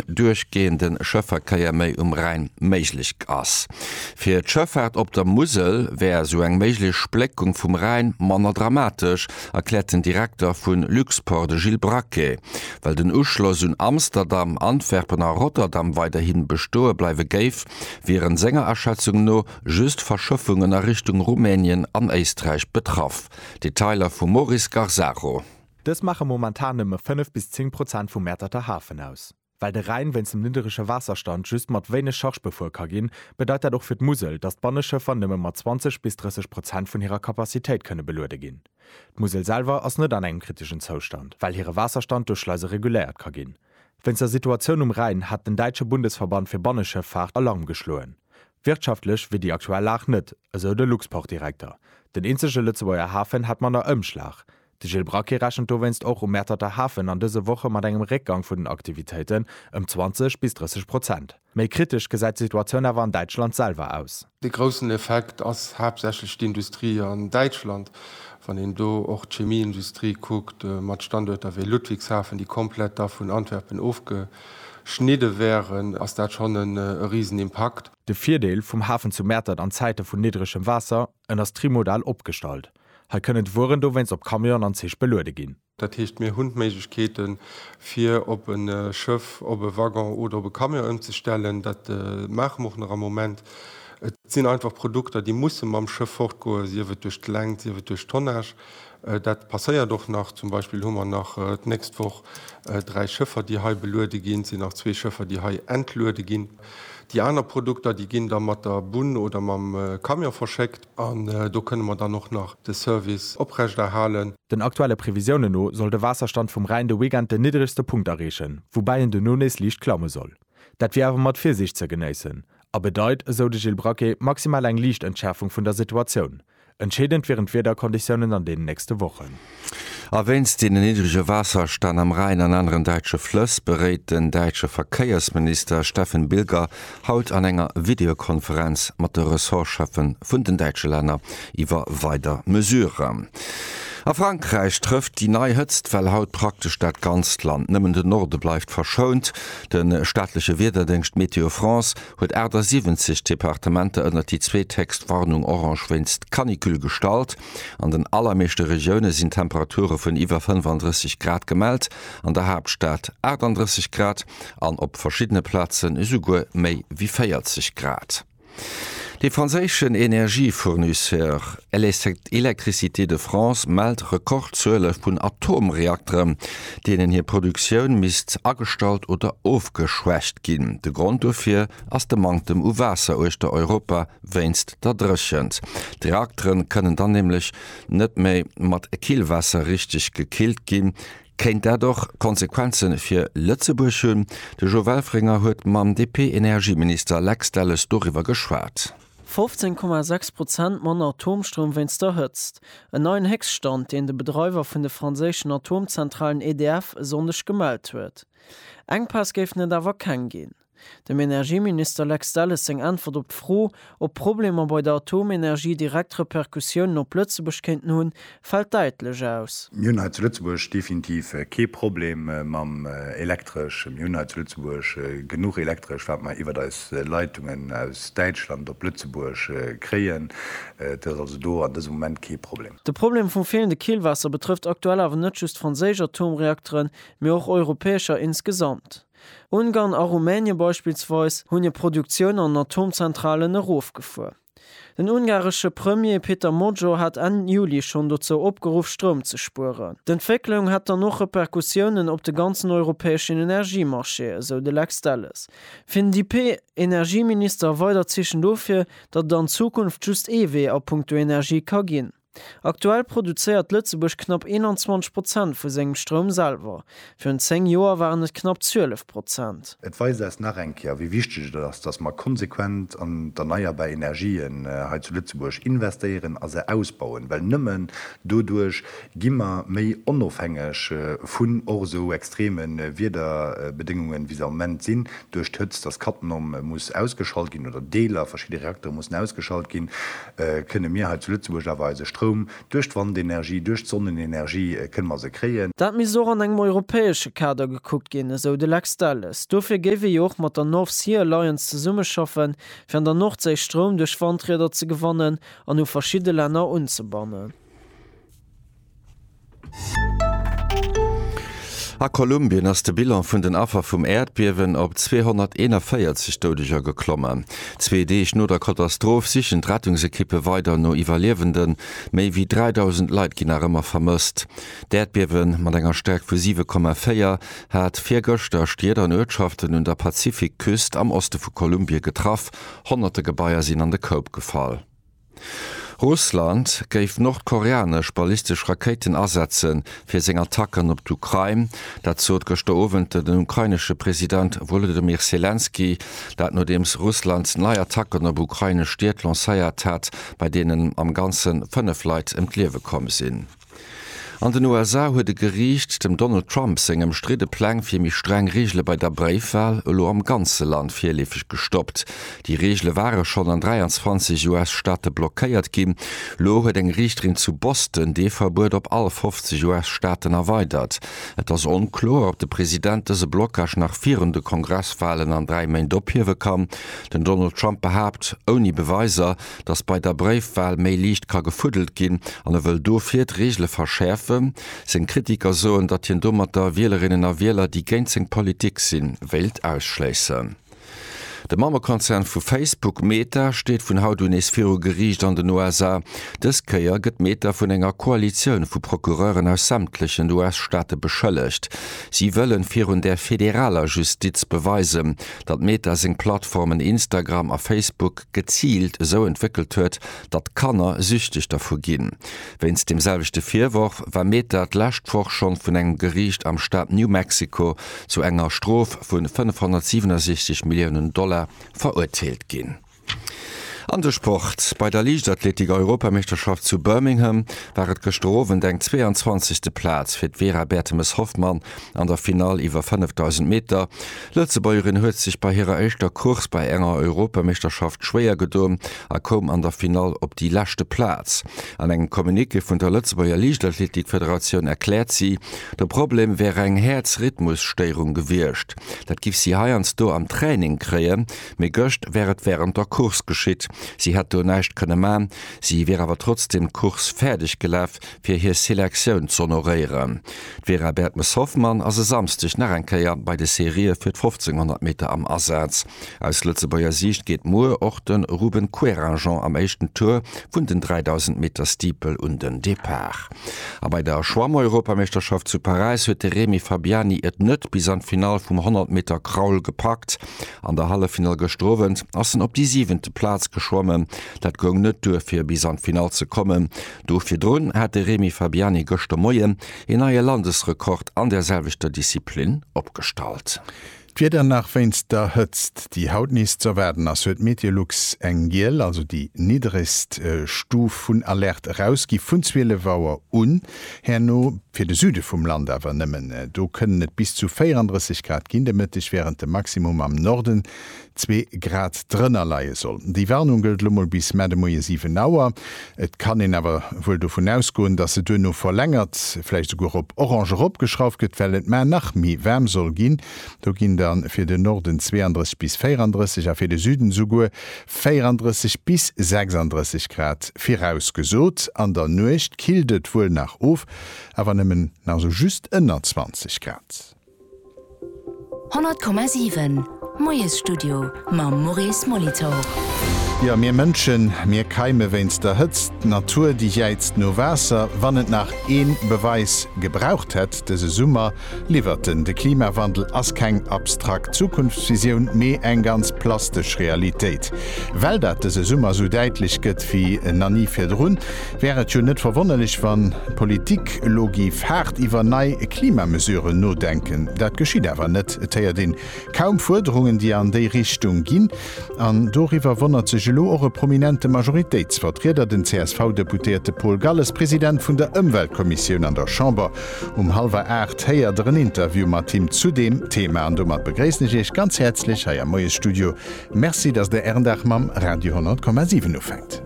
duerchgeeënde Schëfferkeier méi um Rhäin méiglech ass. Fir d'Schëffaart op der Musel wär esou eng méiglech Spléckung vum Rhäin manner dramatesch, erkläert den Direkter vu Luxport, de Gilles Braquet. Well den Uschloss un Amsterdam, Antwerpen a Rotterdam weiderhi bestoe bleiwe géif, wieren senger Aschätzung no just Verschëffungen a Richtung Rumänien an Éisträich betraff. Detailer vum Maurice Garzaro. Dës maache momentan nëmme 5 bis 10 Prozent vum Mäerterter Hafen aus. Well de Rhäin wéinst dem nidderege Waasserstand just mat wéineg Charge befuer ka ginn, bedeit dat och fir d'Musel, datt d'Banneschëffer nëmme mat 20 bis 30 Prozent vun hirer Capacitéit kënne beluede ginn. D'Musel selwer ass net an engem kritegen Zoustand, well hire Waasserstand duerch Schleise reguléiert ka ginn. Wéinst der Situatioun um Rhäin hat den däitsche Bundesverband fir Banneschëffaart Alarm geschloen. Wirtschaftlech wier déi aktuell Lag net, esou de Luxportdirekter. Den eenzege Lëtzebuerger Hafen hätt manner Ëmschlag. De Gilles Braquet rechent dowéinst och um Mäerterter Hafen an dëse Woche mat engem Réckgang vun den Aktivitéiten, ëm 20 bis 30 Prozent. Méi kritesch gesäit d'Situatioun awer an Däitschland selwer aus. De groussen Effekt ass haaptsächlech d'Industrie an Däitschland. Wann een do och d'Chemieindustrie kuckt, mat Standuerter wéi Ludwigshafen, déi komplett da vun Antwerpen ofgeschnidde wären, ass dat schonn e Risenimpakt. De Virdeel vum Hafen zu Mäertert an Zäite vun niddregem Waasser, En ass trimodal opgestallt. Hei kënnen d'Wueren dowéinst op Camionen an Zich beluede ginn. Dat heescht, mir hunn d'Méiglechkeete fir op e Schëff, op e Waggon oder op e Camion ëmzestellen. Dat maache mer och nach am Moment. Et sinn einfach Produkter, déi musse mam Schëff fortgoen, sief et duerch d'Längt, sief et duerch d'Tonnage. Dat passéiert och nach. Zum Beispill hu mer nach d'nächst Woch dräi Schëffer, déi hei beluede ginn. Et sinn nach zwee Schëffer, déi hei entluede ginn. Déi aner Produkter, déi ginn da mat der Bunn oder mam Camion verschéckt. An do kënne mer dann och nach de Service oprechterhalen. Den aktuelle Previsiounen no soll de Waasserstand vum Rhäin de Weekend den niddregste Punkt erreechen, woubäi en duerno nees liicht klamme soll. Dat wier awer mat Virsiicht ze genéissen a bedeit, esou de Gilles Braquet, maximal eng liicht Entschäerfung vun der Situatioun. Entscheedend wieren d'Wiederkonditiounen an deenen nächste Wochen. A wéinst den niddrege Waasserstänn am Rhäin an aneren däitsche Flëss beréit den däitsche Verkéiersminister Steffen Bilger haut an enger Videokonferenz mat de Ressortscheffe vun den däitsche Länner iwwer weider Mesuren. A Frankräich trëfft déi nei Hëtztwell haut praktesch dat ganzt Land, nëmmen de Norde bleift verschount. De staatleche Wiederdéngscht Météo France huet 78 Departementer ënnert déi zweethéchst Warnung orange wéinst Canicule gestallt. An den allermeeschte Regioune sinn Temperature vun iwwer 35 Grad gemellt, an der Haaptstad 38 Grad an op verschiddene Plazen esouguer méi wéi 40 Grad. De franséischen Energiefournisseur Électricité de France mellt Rekordzuele vun Atomreakteren, deenen hir Produktioun misst agestallt oder ofgeschwächt ginn. De Grond dofir ass de Manktem u Waasser uechter Europa wéinst da dréchent. D'Reaktere kënnen dann nämlech net méi mat Killwaasser richteg gekillt ginn. Kéint dat och Konsequenze fir Lëtzebuerg hunn? De Jo Welfringer huet mam DP-Energieminister Lex Delles doriwwer geschwat. 15,6 Prozent manner Atomstroum wéinst der Hëtzt. En neien Héchststand, deen de Bedreiwer vun de franséischen Atomzentralen EDF e Sonndeg gemellt huet. Enkpäss géifen et awer keng ginn. Dem Energieminister Lex Delles seng Äntwert op d'Fro, ob d'Problemer bei der Atomenergie direkt Repercussiounen op Lëtzebuerg kéinten hunn, fält däitlech aus. Mir hunn hei zu Lëtzebuerg definitiv kee Problem mam Elektresch. Mir hunn hei zu Lëtzebuerg genuch Elektresch, wat mer iwwert eis Leitungen aus Däitschland op Lëtzebuerg kréien. Dat ass also do an dësem Moment kee Problem. De Problem vum feelende Killwaasser betrëfft aktuell awer net just franséisch Atomreakteren, mee och europäescher insgesamt. Ungarn a Rumänien beispillsweis hunn hir Produktioun an Atomzentralen erofgefuer. Den ungaresche Premier Peter Magyar hat Enn Juli schonn dozou opgeruff, Stroum ze spueren. D'Entwécklung hätt dann och Repercussiounen op de ganzen europäeschen Energiemarché, esou de Lex Delles. Fir den DP-Energieminister weidert Zeechen dofir, datt et an Zukunft just ee Wee a puncto Energie ka ginn. Aktuell produzéiert Lëtzebuerg knapp 21 Prozent vu sengem Stroum selwer, virun 10 Joer waren et knapp 12 Prozent. Et weist eis nach eng Kéier, wéi wichteg et ass, datt mer konsequent an d'erneierbar Energien hei zu Lëtzebuerg investéieren a se ausbauen, well nëmmen doduerch gi mer méi onofhängeg vun och esou extreme Wiederbedéngungen, wéi se am Moment sinn, duerch d'Hëtzt, datt Cattenom muss ausgeschalt ginn oder Deeler, verschidde Reaktere mussen ausgeschalt ginn. kënne mir hei zu Lëtzebuerg awer eise Stroum duerch d'Wandenergie, duerch d'Sonnenenergie kënne mer se kréien. Dat misst och an engem europäesche Kader gekuckt ginn, esou de Lex Delles. Dofir géif ee jo och mat der North Sea Alliance zesummeschaffen, fir an der Nordséi Stroum duerch Wandrieder ze gewannen an u verschidde Länner unzebannen. A Kolumbien ass de Bilan vun den Affer vum Äerdbiewen op 241 Doudeger geklommen. Zwee Deeg no der Katastroph sichen d'Rettungsekippe weider no Iwwerliewenden. Méi wéi 3.000 Leit ginn nach ëmmer vermësst. D'Äerdbiewe mat enger Stäerkt vu 7,4 hat virgëschter Stied an Uertschaften un der Pazifikküst am Oste vu Kolumbie getraff. Honnerte Gebaier sinn an de Koup gefall. Russland géif nordkoreanesch ballistesch Rakéiten asetze fir seng Attacken op d'Ukrain. Dat sot gëschter Owend den ukrainesche President Wolodymyr Selenskyj. Dat nodeems Russland nei Attacken op ukrainesch Stied lancéiert hat, bei deenen am Ganze 5 Leit ëm d'Liewe komm sinn. An den USA huet e Geriicht dem Donald Trump seng ëmstridde Pläng fir méi streng Reegele bei der Bréifwal elo am ganze Land virleefeg gestoppt. Déi Reegele ware schonn an 23 US-Staate blockéiert ginn. Elo huet eng Riichterin zu Boston dee Verbuet op all 50 US-Staaten erweidert. Et ass onkloer, ob de President dëse Blockage nach virun de Kongresswalen an dräi Méint ophiewe kann. Den Donald Trump behaapt ouni Beweiser, dass bei der Bréifwal méi liicht ka gefuddelt ginn an e wëll dofir d'Reegele verschäerfen. Seng Kritiker soen, datt hien domatter Wielerinnen a Wieler, déi géint seng Politik sinn, wéilt ausschléissen. De Mammekonzern vu Facebook, Meta, steet vun haut un nees viru Geriicht an den USA. Dës Kéier gëtt Meta vun enger Koalitioun vu Procureuren aus sämtlechen US-Staate beschëllegt. Si wëllen virun der federaler Justiz beweisen, datt Meta seng Plattformen Instagram a Facebook geziilt esou entwéckelt huet, datt Kanner süchteg dervu ginn. Wéinst deem selwechte Virworf war Meta d'lescht Woch schonn vun engem Geriicht am Staat New Mexico zu enger Strof vun 567 Milliounen Dollar verurteelt ginn. An de Sport, Bei der Liichtathletik-Europameeschterschaft zu Birmingham war et gëschter Owend eng 22. Plaz fir d'Vera Bertemes-Hoffmann an der Finall iwwer 5.000 Meter. D'Lëtzebuergerin huet sech bei hirer éischter Course bei enger Europameeschterschaft schwéier gedoen a koum an der Finall op déi leschte Plaz. An engem Communiqué vun der Lëtzebuerger Liichtathletik-Federatioun erkläert si, de Problem wär eng Häerzrhythmusstéierung gewiescht. Dat giff si heiansdo am Training kréien. Mee gëscht wär et wärend der Course geschitt. Si hätt do näischt kënne man. Si wier awer trotzdeem d'Course fäerdeg gelaf, fir hir Selektioun z'honoréieren. D'Vera Bertmes-Hoffmann ass e Samsdeg nach eng Kéier bei de Serië fir d'Fofzénghonnert Meter am Asaz. Aus Lëtzebuerger Siicht geet muer och de Ruben Querinjean am éischten Tour vun den 3000 Meter Steeple un den Depart. A bei der Schwammeuropameeschterschaft zu Paräis huet de Remi Fabiani et net bis an d'Finall vum 100 Meter Crawl gepackt. An der Halleffinall gëschter Owend ass en op déi siwente Plaz geschwommen. Dat goung net duer fir bis an d'Finall ze kommen. Do virdrun hat de Remi Fabiani gëschter Moien een neie Landesrekord an der selwechter Disziplin opgestallt. D'Wieder nach wéinst der Hëtzt, déi haut nees ze erwaarden ass, huet Meteolux eng giel, also déi niddregst Stuf vun Alerte erausgi vun 12 Auer un. Herno fir de Süde vum Land awer nëmmen. Do kënnen et bis zu 34 Grad ginn de Mëtteg, wärend de Maximum am Norden zwee Grad drënner leie soll. Déi Warnung gëllt lo mol bis Mar de Moie 7 Auer. Et kann een awer wuel dovun ausgoen, dass se duerno verlängert, vläicht esouguer op orange eropgeschrauft gëtt, well et mar nach méi waarm soll ginn. Do ginn da fir de Norden 32 bis 34 a fir de Süden esouguer 34 bis 36 Grad virausgesot, an der Nuecht killt et wuel nach of, awer nëmmen nach sou just ënner 20 Grad. 100,7 Moiesstudio mam Maurice Molitor. Jo, mir Mënschen, mir keime wéinst der Hëtzt. D'Natur, déi jäizt no Waasser. Wann et nach ee Beweis gebraucht hätt dëse Summer, Liwwert en, De Klimawandel ass keng abstrakt Zukunftsvisioun, mee eng ganz plastesch Realitéit. Well dat dëse Summer esou däitlech gëtt wéi na ni virdrun, wär et jo net verwonnerlech, wann d'Politik elo géif haart iwwer nei Klimamesuren nodenken. Dat geschitt awer net. Et héiert een kaum Fuerderungen, déi an déi Richtung ginn. An doriwwer wonnert sech elo och e prominente Majoritéitsvertrieder, den CSV-Deputéierte Paul Galles, President vun der Ëmweltkommissioun an der Chamber. Um hallwer aacht héiert der en Interview mat him zu deem Thema. An domat begréissen ech Iech ganz häerzlech hei am Moiesstudio. Merci, datt Der Ären Dag mam Radio 100,7 ufänkt.